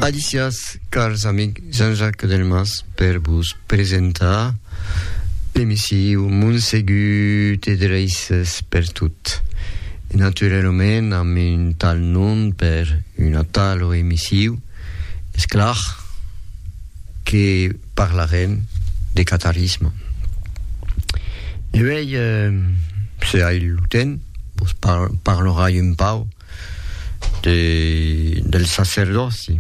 Alicias, cars amic Jean-Jacques Delmas per vos presentar l'emissiu Montsegut e Dreisses per tot. E naturalament amb un tal nom per una talo emissiu, es clar que parlarem de catarisme. E uèi, se ai lo temps, vos parlorai un pauc de, del sacerdòci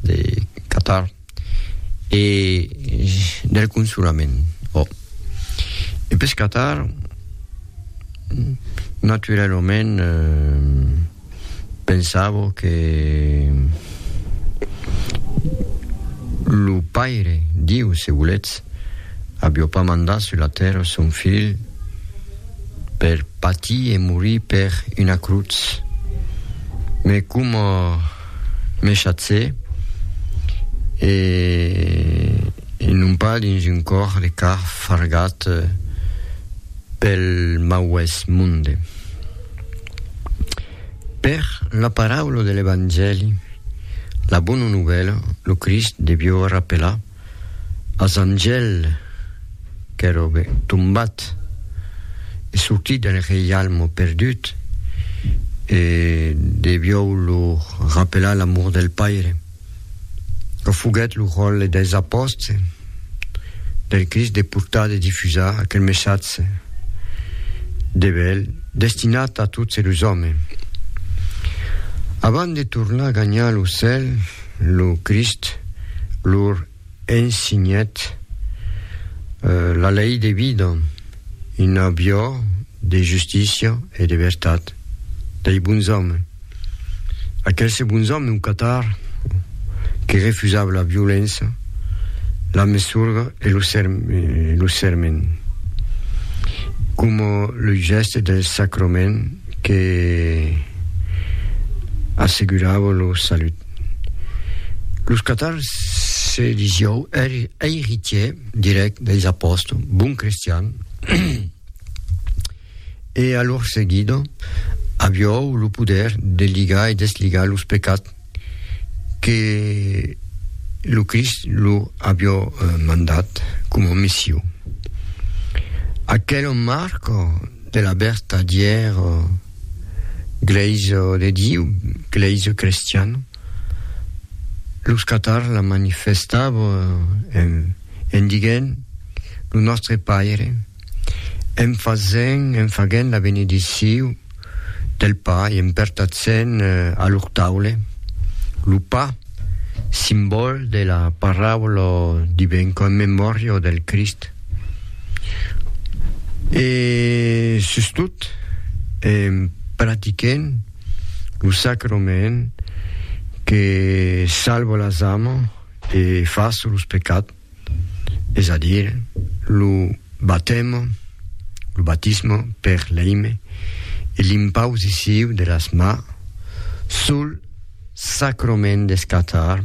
de Qatar e del consolament. Oh. E pes Qatar, naturalament, eh, pensavo que lo Paire, Diu, se volètz, avió pas mandat sus la tèrra son Filh, per patir e morir per una crutz, me coma me chatze e, e non pas dins un còr de car fargat pel mauès monde. Per la paraula de l'Evangèli, la bona novèla, lo Crist devió rapelar, as Angèl qu'èra tombat e sortit del reialme perdut e deviou lo rapelar l'amor del Paire, que foguèt lo ròtle dels apòstes del Crist de portar, de difusar aquel messatge de bèl destinat a tots los òmes. Avant de tornar gagnar lo cèl, lo Crist lor ensinhèt la lei de vida, una viò de justícia e de vertat, dei bons òmes. Aquelse bons òmes au Qatar que refusava la violença, la mesurga e lo serment, coma lo gèste del sacrament, que assegurava lo salut. Los catars se disieu eiritier direct deis apòstol, bon cristian, e a lor seguida aviou lo poder de ligar e desligar los pecats que lo Crist lo avió mandat coma missiu. Aquel marco de la vertadièr Glèisa de Diu, Glèisa crestiana, los catars la manifestava en diguent lo Nòstre Paire, en fasent, en faguent la benediciu del pa e en pertatzent a lor taule lo pa, simbòl de la paraula divin qu'en memòria del Crist. E sustot en practiquent lo sacrament que salva las amas e fas los pecats. es a dir, lo batèm, lo batisme per l'èime e l'impousiciu de las ma sul sacrament d'escatar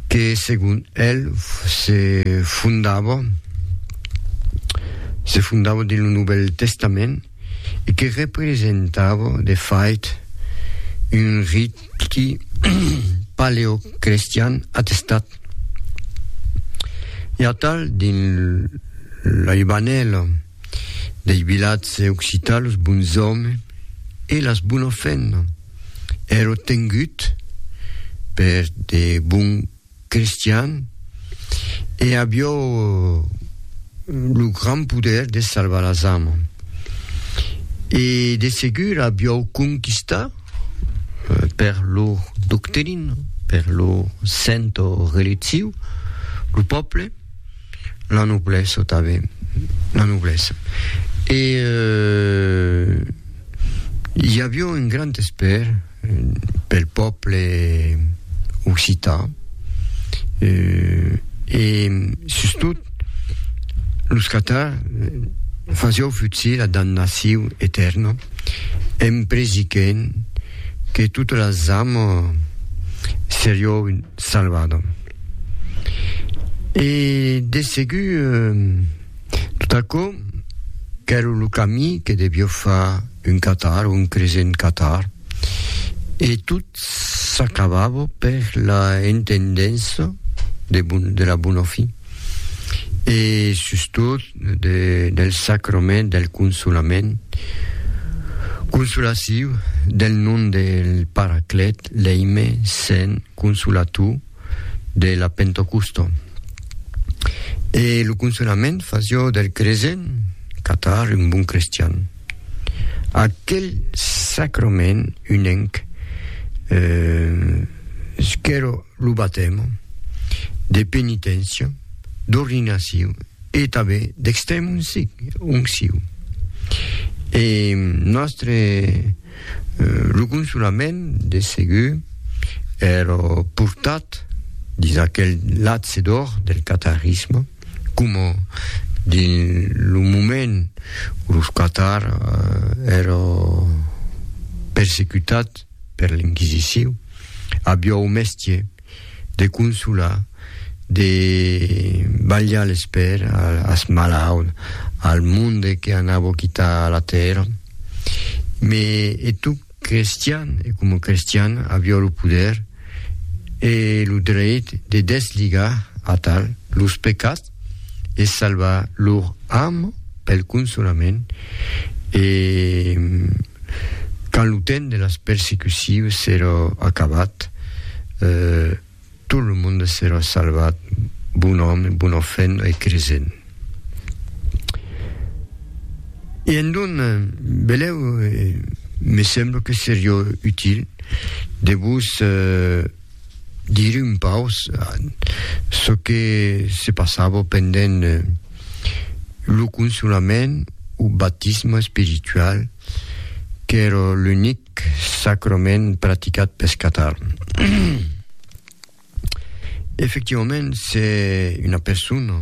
que segon el se fondava se fondava dins lo Novèl Testament, e que representava de fait un riti paleocrestian atestat. I a tal dins la libanèla dei vilatge occitan los bonzòme e las bonofèna èro tengut per de bon Cristian, e avió lo grand poder de salvar las amas. E de segur avió conquistat per lor doctrina, per lor sento religiu, lo pòble, la noblesa tanben, la noblesa. E i avió un grand espèr. pel pòble occità e sustot los catar fasió futsir la damnaciu etèrna en presiquent que tota la zama serió salvada e de segur tot aquò qu'èra lo camí que devió far un catar, un cresent catar, e tot s'acabava per la entendença de, bon, de la bona fin, e sustot de, del sacrament del consolament, consolaciu del nom del Paraclet, l'Eime, Sent, Consolator, de la Pentocusta. E lo consolament fasió del cresent catar un bon crestian. Aquel sacrament unenc eh, qu'èra lo batèma, de penitencia, d'ordinaciu e tanben d'extrèm onciu. E nòstre Lo consolament, de segur, èrò portat dins aquel latse d'òr del qatarisme, coma dins lo moment o los qatars èrò persecutats per l'Inquisiciu, aviá o mestier, de consolar, de balhar l'esper as malauds, al monde que anavo quitar la tèrra. Me e tu crestian e coma crestian avió lo poder e lo dreit de desligar atal los pecats e salvar lor arm pel consolament e quand lo temps de las persecucions serà acabat tot lo monde serà salvat bon òme, bona fent e cresent e endonc belèu me sembla que seriá util de vos Dire un paus çò que se passava pendent lo consolament o batisme espiritual qu'èra l'unic sacrament practicat pes Catar. Efectivament se una persona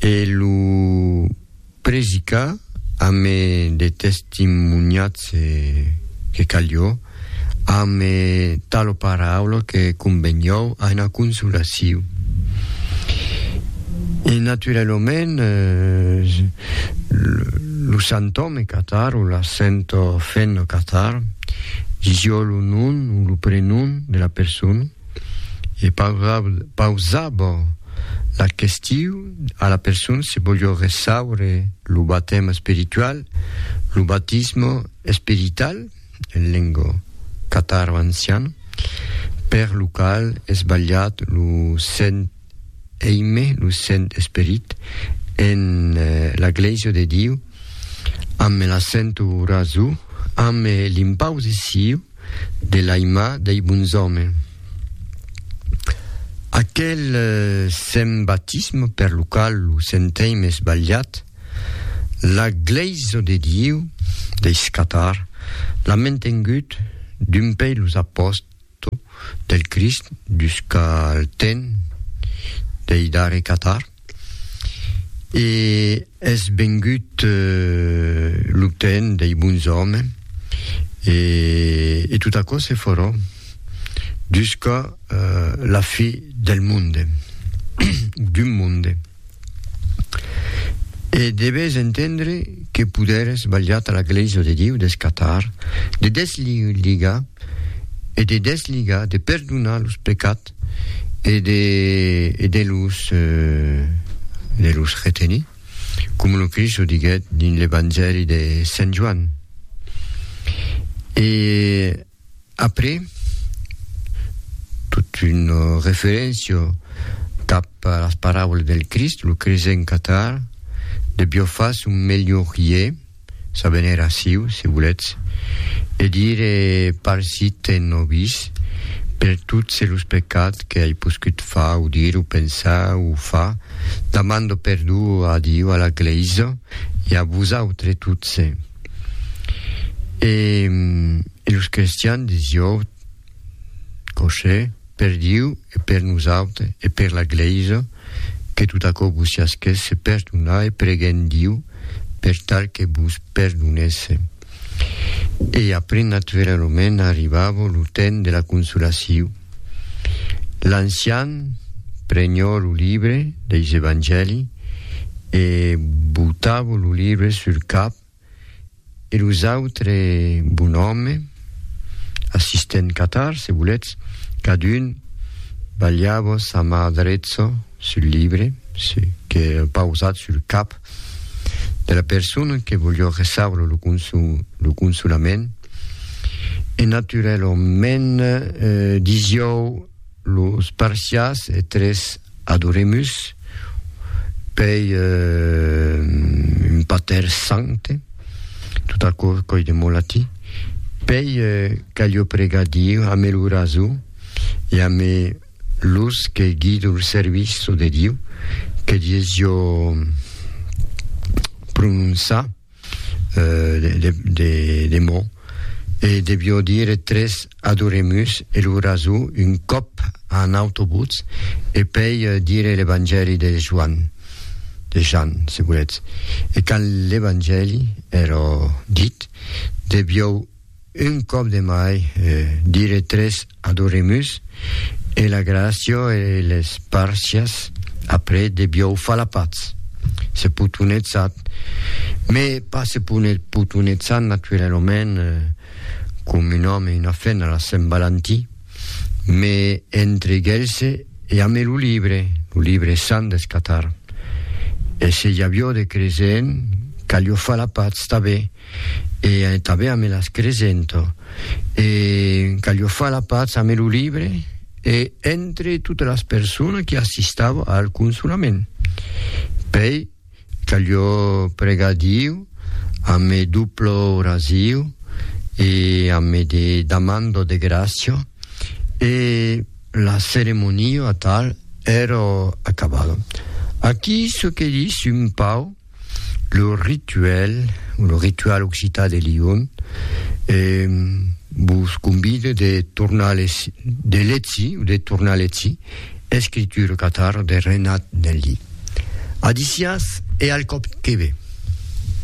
E lo predicar ame de testimoniats que calió, ame talo paraula que convenió a ena consolacion. E naturalomènt lo santòme catar o la sento fenno catar, disió lo nom o lo prenom de la persona, e pausava la question a la persona se voliá ressaure lo batèm espiritual, lo batismo esperital en lengo cataro-anciana, per lo qual es balhat lo Sent Eime, lo Sent Esperit, en la Glèisa de Diu, ambe l'accento raso, ambe l'impausissiu, de l'Aima dei Bunzòme. Aquel sent batisme per lo qual lo senteim esbalhat, la Glèisa de Dieu dei Catar l'a mentengut dumpei los apòstles del Crist dus qu'al temps dei darrei Catar. E es vengut lo temps dei bons òmes, e, e tot aquò se farà jusqu'a la fi del monde, d'un monde. E deves entendre que poder es balhat a la Glèisa de Diu des catar, de des ligar, e de des ligar, de perdonar los pecats, e de e de los de los retenir, com lo Crist o diguèt dins l'Evangèli de Sent Joan. E après tot un referencio cap a las paraulas del Crist, lo cresent catar de Biofas un melhorier, S'a venir aciu, se voletz, e dire parsit ten o vis per tots los pecats que ai poscut far o dire o pensar o far, damando perdó a Diu, a la Glèisa e a vosautres tots. E los crestians de Siòut. Cossé, per Diu e per nosautres e per la Glèisa, que tot aquò vos siasquèsse perdonat e preguem Diu per tal que vos perdonèsse. E après natveralament arribava lo temps de la consolaciu. L'ancian prenhò lo libre deis Evangèli e botava lo libre sul cap e los autres bonòmes, assistent catar, se volètz, cadun balhava sa mà drecha sul libre se que pausat sul cap de la persona que voliá recebre lo lo consolament e naturèlament disiáu Los Parsiás e tres Adoremus pei un Pater Sancte, tot aquò coi de molati, pei calio pregar Diu ame lo raso e ame los que guido lo serviço de Diu, que dies jo prononçar. de mò, e devió dire tres Adoremus e lo raso un còp a un autobutz e pei dire l'Evangèli de Joan, de Jan, se volètz. E quand l'Evangèli èra dit, devió Un còp de mai, dire tres Adoremus e la Gràcia e les Parcias après de biòu falapats. Se potonetsat, me pas se potonetsat naturalament com un òme e una femna la Sent Valentin, me entre gelse e ame lo libre, lo libre sant deth Catar. E se i avió de creser en, calió falapats tabé. e tanben ame las cresento e calio far la patz ame lo libre e entre totas las personas qui assistavo al consolament pei calio pregar Diu ame duplo orasiu e ame de damando de gracio e la ceremonia tal ero acabado aqui ce que dis un pau lo rituel, lo ritual occitan de Lyon, e vos convide de tornar les, de letzi, de tornar letzi, escriture catar de Renat Nelli. Adicias e al còp que ve.